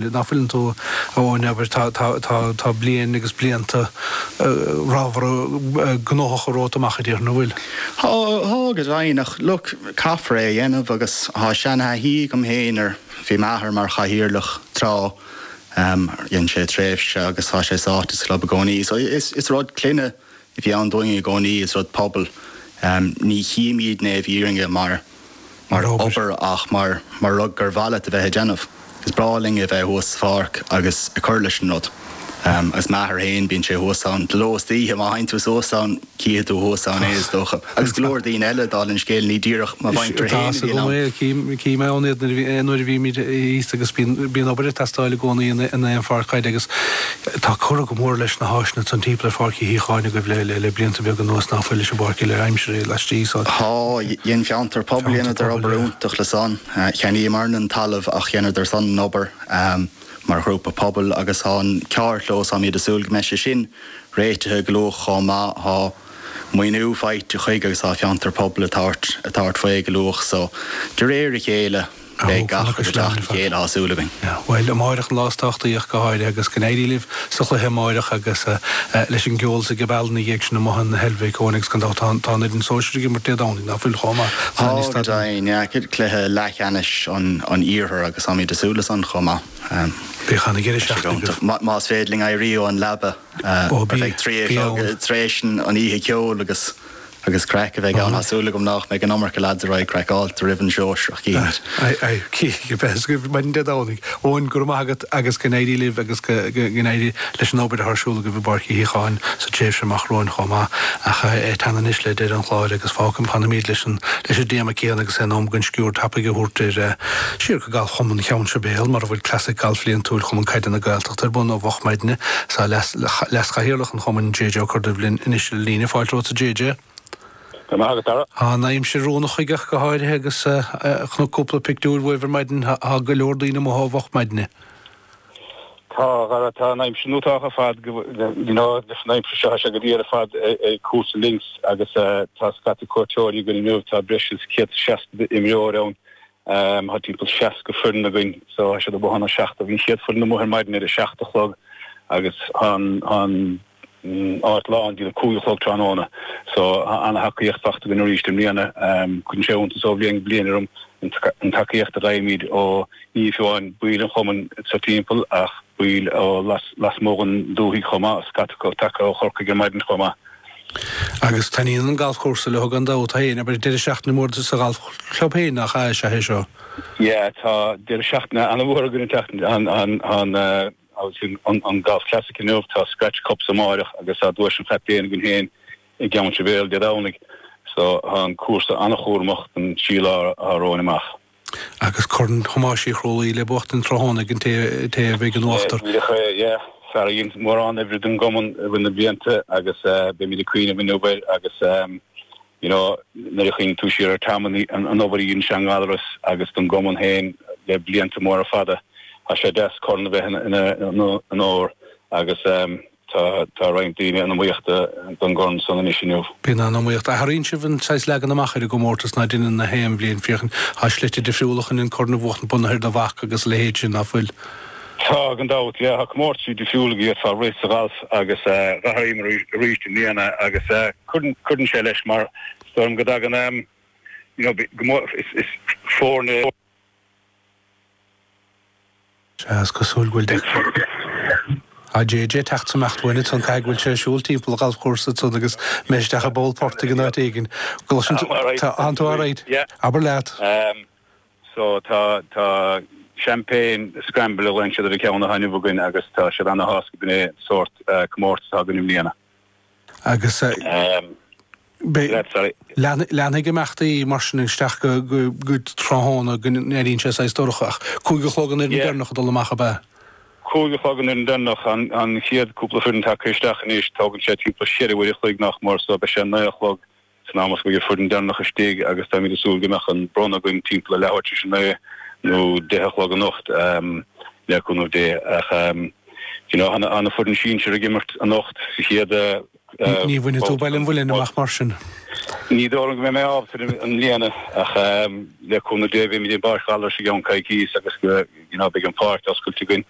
Nach bhfuileann tú, a Eoin, ab fhearr, tá, tá bliain agus blianta ramhra gnóthacha romhat amach a déarfainn, an bhfuil? Tá, tá, go deimhin, ach look, caithfear é a dhéanamh agus tá seanathaithí agam féin ar, bhí m'athair mar chathaoirleach tráth, dhein sé tréimhse agus tá sé sáite sa chlub i gcónaí, so is, is rud clainne. a bhí ann dúinn i gcónaí, is rud pobail. Ní chímidne é i bhfírinne mar obair ach mar rud gur mhaith leat a bheith ag déanamh. Is breá linn a bheith thuas sa pháirc agus ag cur leis an rud. Agus m'athair féin, bíonn sé thuas ann de ló is d'oíche. Má théann tú suas ann, cífidh tú thuas ann é, is dócha. Agus go leor daoine eile, dála an scéil, ní díreach mo mhuintir féin a bhíonn ann. Chím ann iad nuair a bhímid thíos agus bíonn obair ag teastáil i gcónaí in aon pháirc chaide agus tá curtha go mór leis na háiseanna san timpeall ar Pháirc Uí Shíothcháin agaibh le blianta beaga anuas ná fuil leis an bpáirc uile aimsire laistigh san. Tá, dhein Fiontar Pobail, dheineadar obair iontach le san. Cheannaíomarna an talamh ach dheineadar san an obair mar ghrúpa pobail agus tá an carrchlós, táimid ag súil go mbeidh sé sin réitithe go luath chomh maith. Maoiniú faighte chuige agus tá Fiontar Pobail ag tabhairt faoi go luath so. De réir a chéile, beidh gach rud ag teacht le chéile, tá súil againn. Bhuel, amárach an lá is tábhachtaí ach go háirithe agus go n-éirí libh sa chluiche amárach agus leis an gceol sa phuball ina dhiaidh san amuigh i Heilbhic, a Eoghain agus gan dabht tá an fhoireann sóisir ag imirt Dé Domhnaigh, ná fuil chomh maith? Tá go deimhin, yeah, cluiche leathcheannais an iarthair agus táimid ag súil le san chomh maith. Beidh an-deireadh seachtaine agaibh. Más féidir linn éirí ón leaba. Tar éis an oíche ceoil agus craic a bheidh ann. Tá súil agam nach mbeidh an iomarca leaids craiceáilte roimh an sóisear, is maidin Dé Domhnaigh. Eoin, go raibh maith agat agus go n-éirí libh agus go n-éirí leis an obair atá ar siúl agaibh i bPáirc Uí Shíothcháin sa tréimhse amach romhainn chomh maith. Ach ag teannadh anois le deireadh an chláir agus fágfaimid, fanaimid leis an, leis an dtéama céanna agus é in am againn sciuird tapaidh a thabhairt ar, siar go Galfchumann Cheann Sibéal mar a bhfuil Clasaic Gailf bhliantúil Chumann Caide na Gaeltachta, Ar bun ó mhoch maidne is tá leaschathaoirleach an chumainn JJ Ó Corrduibh linn anois ar an líne. Fáilte romhat a JJ. Go raibh maith agat a Dhara. Tá an aimsir oiriúnach chuige ach go háirithe agus chonac cúpla pictiúir uaibh ar maidin. Tá go leor daoine amuigh ó mhoch maidne. Tá Dhara, tá an aimsir iontach ar fad you know leis an aimsir seo tá sé go diail ar fad ag cúrsa links agus tá scata cuairteoirí againn inniu tá breis is 160 imreoir ann Tá timpeall seasca foireann againn so tá siad amuigh óna seacht, bhí an chéad foireann amuigh ar maidin ar a seacht a chlog agus tá an áit lán dtí a cúig a chlog tráthnóna so tá an-tacaíocht faighte againn arís i mbliana. Cuireann sé iontas ó bhliain go bliain orm an tacaíocht a fhaighimid ó ní amháin baill an chumainn sa timpeall ach baill ó lasmuigh den dúthaigh chomh maith, scata acu tagtha ó Chorcaigh ar maidin chomh maith. Agus taitníonn an galfchúrsa leo gan dabht féin, abair deireadh seachtaine mór sa ghalfchlub féinig is ea é seo. Yeah, tá deireadh seachtaine an-mhór againn an tseachtain seo, an Galf Classic inniu, tá Scratch Cups amáireach agus tá Duais an Chaptaein againn féin i gCeann Sibéal Dé Domhnaigh, so tá an cúrsa an-chúramach don trí lá atá romhainn amach. Agus Corn Thomáis Uí Chrualaoi le buachtaint tráthnóna ag an té a bheidh in uachtar. Fear a dhein mórán oibre don gcumann i rith na blianta agus beimid ag cuimhneamh inniu air agus you know nuair a chuimhníonn tú siar ar Tom an obair a dhein sé i nGallaras agus don gcumann féin le blianta móra fada tá sé deas corn a bheith ina onóir agus Tá roinnt daoine in iomaíocht don gcorn san anois inniu. Bíonn an-iomaíocht. Athraíonn sibh an saghas leagan amach ar an gcomórtas ná deineann gach aon bhliain, féachaint. Tá slite difriúla chun an corn a bhuachtaint bunaithe ar do bhac agus a leithéid sin, ná fuil? Tá gan dabht, yeah. Tá comórtaisí difriúla gur féidir a rith sa ghalf agus athraíomar arís i mbliana agus cuireann sé leis mar is dóigh liom go dtagann, you know, go mór, is foirne, Sea, is cosúil go bhfuil JJ ag teacht is ag imeacht uainn ansan, caithfidh go bhfuil sé ag siúl timpeall an ghalfchúrsa ansan agus imithe isteach i bpoll portaigh in áit éigin. An gcloiseann tú, tánn tú alright. Abair leat. Ahem. So, tá, tá Champagne Scramble a ghlaonn siad ar an gceann atá inniu againn agus tá siad ana-shásta gurb in é an sórt, eh, comórtas atá againn i mbliana. Agus leanfaidh imeachtaí mar sin isteach go tráthnóna, go n-éiríonn sé saghas dorcha. Ach cúig a chlog an fhoireann deireanach ag dul amach, ab ea? Cúig a chlog an fhoireann deireanach, an chéad cúpla foireann tagtha isteach anois. Tógann sé timpeall cheithre uair a chloig, nach mór, so beidh sé naoi a chlog San am is go mbeidh an foireann deireanach istigh agus táimid ag súil go mbeadh an bronnadh againn timpeall a leathuair tar éis a naoi nó deich a chlog anocht, le cúnamh Dé. Ach you know, tá na foireann sinsir ag imirt anocht sa chéad. Ní bhainfidh tú Baile an Mhuilinn amach mar sin? Ní dóigh liom go mbeidh mé ábalta i mbliana ach le cúnamh Dé beimid i bPáirc Ghallarais i gceann coicíos agus you know beidh an pháirc oscailte againn.